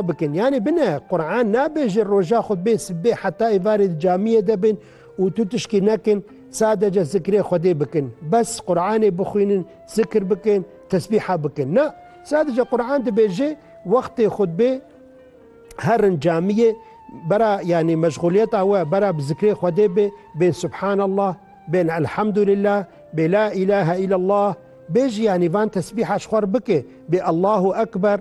bikin. Yanî bine Quran nabêje roja xwe bê sibê heta êvarê di camiyê de bin û tu tişkî nekin sadece zikrê Xwedê bikin. Bes Quranê bixwînin, zikr bikin, tesbîha bikin. Na, sadece Quran dibêje wextê xwe bê herin camiyê bera yanî meşxuliyeta we bera bi zikrê Xwedê bê, bên Subhanallah, bên Elhamdulillah, bê La îlahe îllallah, bêjî yanî van tesbîha ji xwe re bike, bê Allahu Ekber,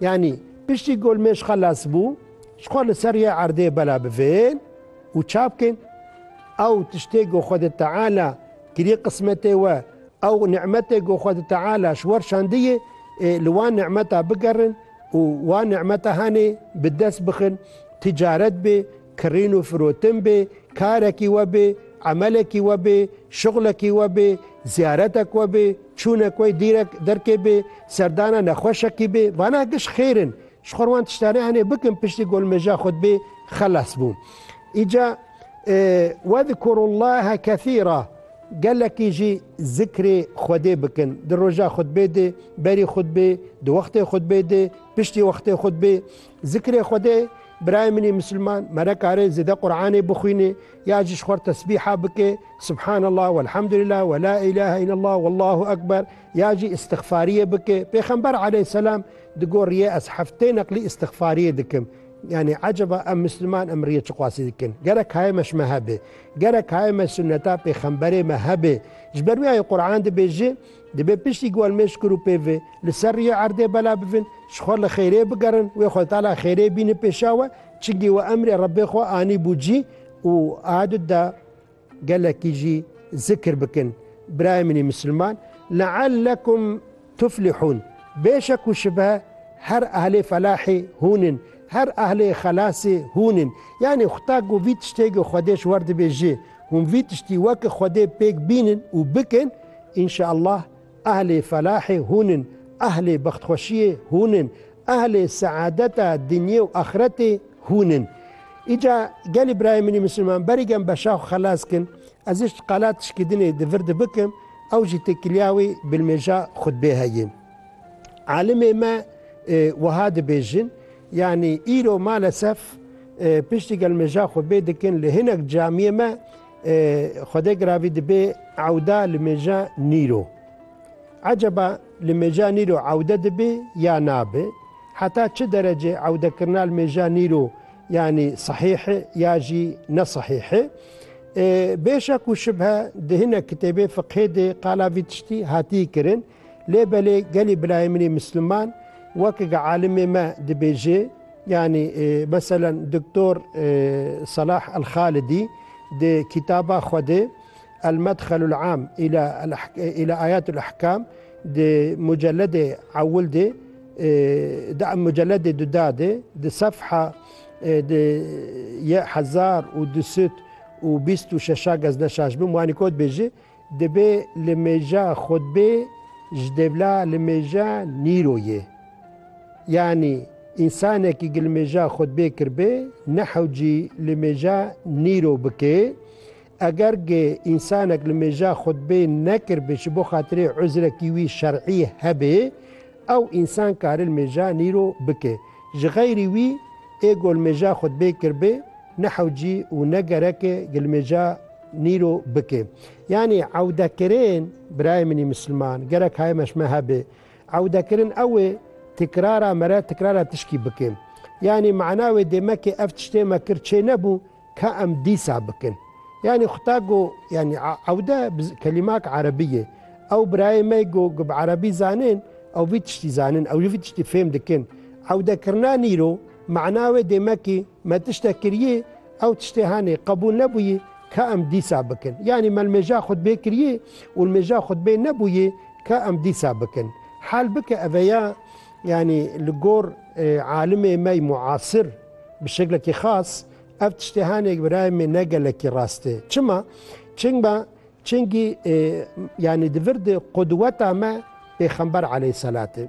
Yanî piştî golmêj xelas bû, ji xwe li ser yê erdê bela bivên û çap kên. Ew tiştê ku Xwedê Teala kiriye qismetê we, ew nimetê ku Xwedê Teala ji we şandiye, li wan nimeta bigerin û wan nimeta hanê bi dest bixin, ticaret bê, Kirîn û firotin bê, karekî we bê, emelekî we bê, şixulekî we bê, ziyaretek we bê, çûnek wey dîrek derkê bê, serdana nexweşekî bê, vana giş xêr in. Ji xwe re wan tiştanê hene bikin piştî golmeja xwe dibê xelas bûn. Îca Wezkurullaha kesîra gelekî jî zikrê Xwedê bikin. Di roja xutbê de, berî xutbê, di wextê xutbê de, piştî wextê xutbê Zikrê Xwedê, Birayê min ê Misilman, me nekare zêde Quranê bixwîne, ya ji xwar tesbîha bike, Subhanallah, Welhamdulillah, Wela îlahe îllallah, Wallahu Ekber, ya jî îstixfariyê bike. Pêxember aleyhselam digoriye, Ez heftê neqlî îstixfariyê dikim. Yanî eceba em Misilman em riyê çiqasî dikin? Gerek haye me ji me hebe. Gerek haye me sunneta pêxemberê me hebe. Ji ber wî ayê Quran dibêje. Dibe piştî ku em mêşkur û pêvê li ser riyê erdê bela bivin, ji xwe li xêrê bigerin, wê xwe li tala xêrê bînin pêşa we, çimkî we emrê Rebbê xwe anîbû cî û adut da gelekî jî zikr bikin. Birayê min ê misilman, leellekum tuflihûn, bê şek û şibe her ehlê felahê hûn in, her ehlê xelasê hûn in. Yanî xuda ku vî tiştê ku Xwedê ji we re dibêje, Hûn vî tiştî weke Xwedê pêk bînin û bikin, înşeallah ehlê felahê hûn in, ehlê bextxweşiyê hûn in, ehlê seadeta dinyê û axretê hûn in. Îca gelê birayê min ê misilman berî gen beşa xwe xelas kin, ez hişt qala tişkîdinê di vir de bikim, ew jî têkiliya wê bilmêja xutbê heye. Alimê me wiha dibêjin, yanî îro malesef piştî gelmêja xwe bê dikin li hinek camiyê me Xwedê Giravî dibê ewda li mêja nîro. Eceba li mêja nîro ewde dibê ya nabe? Heta çi derecê ewdekirina li mêja nîro yanî sehîh e ya jî ne sehîh e? Bê şek û şibhe di hinek kitêbê fiqhê de qala vî tiştî hatiye kirin. Lê belê gelê birayê min ê misliman wek ga alimê me dibêje yanî meselen Doktor Selah El-Xalidî di kîtaba xwe de El-Medxelul-Am îla îla Ayat-ul-Ehkam di muceledê ewil de di muceledê duda de di sefha di ye hezar û du sed û bîst û şeşa gezneşaş bim wanî ko dibêje Dibê li mêja xwedbê ji dêvla li mêja nîro yê. Yanî însanekî gi li mêja xwedbê kiribê nehewcî li mêja nîro bikê. Eger gi însanek li mêja xwedbê nekiribê ji bo xatirê uzrekî wî şer'î hebê, ew însan kari li mêja nîro bikê. Ji xeyrî wî ê ku li mêja xwedbê kiribê nehewcî û ne gereke gi li mêja nîro bike. Yanî ewdekirin birayê min î misilman gerek haye me ji me hebe. Ewdekirin ew ê tîkrara me re tîkrara tişkî bike. Yanî mana wê dê me kê ev tiştê me kir çê nebû ka em dîsa bikin. Yanî xuta go yanî ewde bi kelîmak erebî ye. Ew birayê me go ku bi erebî zanin ew vî tiştî zanin ew jî vî tiştî fêm dikin. Ewdekirina nîro mana wê dê me kê. Me tiştek kiriyê, ew tiştê henê qebûl nebûyê ke em dîsa bikin. Yanî me li mêja xutbê kiriyê û li mêja xutbê nebûyê ke em dîsa bikin. Hal bike eve ya yanî li gor alimê me yê muasir bi şeklekî xas ev tiştê henê birayê min ne gelekî rast e. Çima? Çinga çingî yanî di vir de qudweta me Pêxember aleyhî selat e.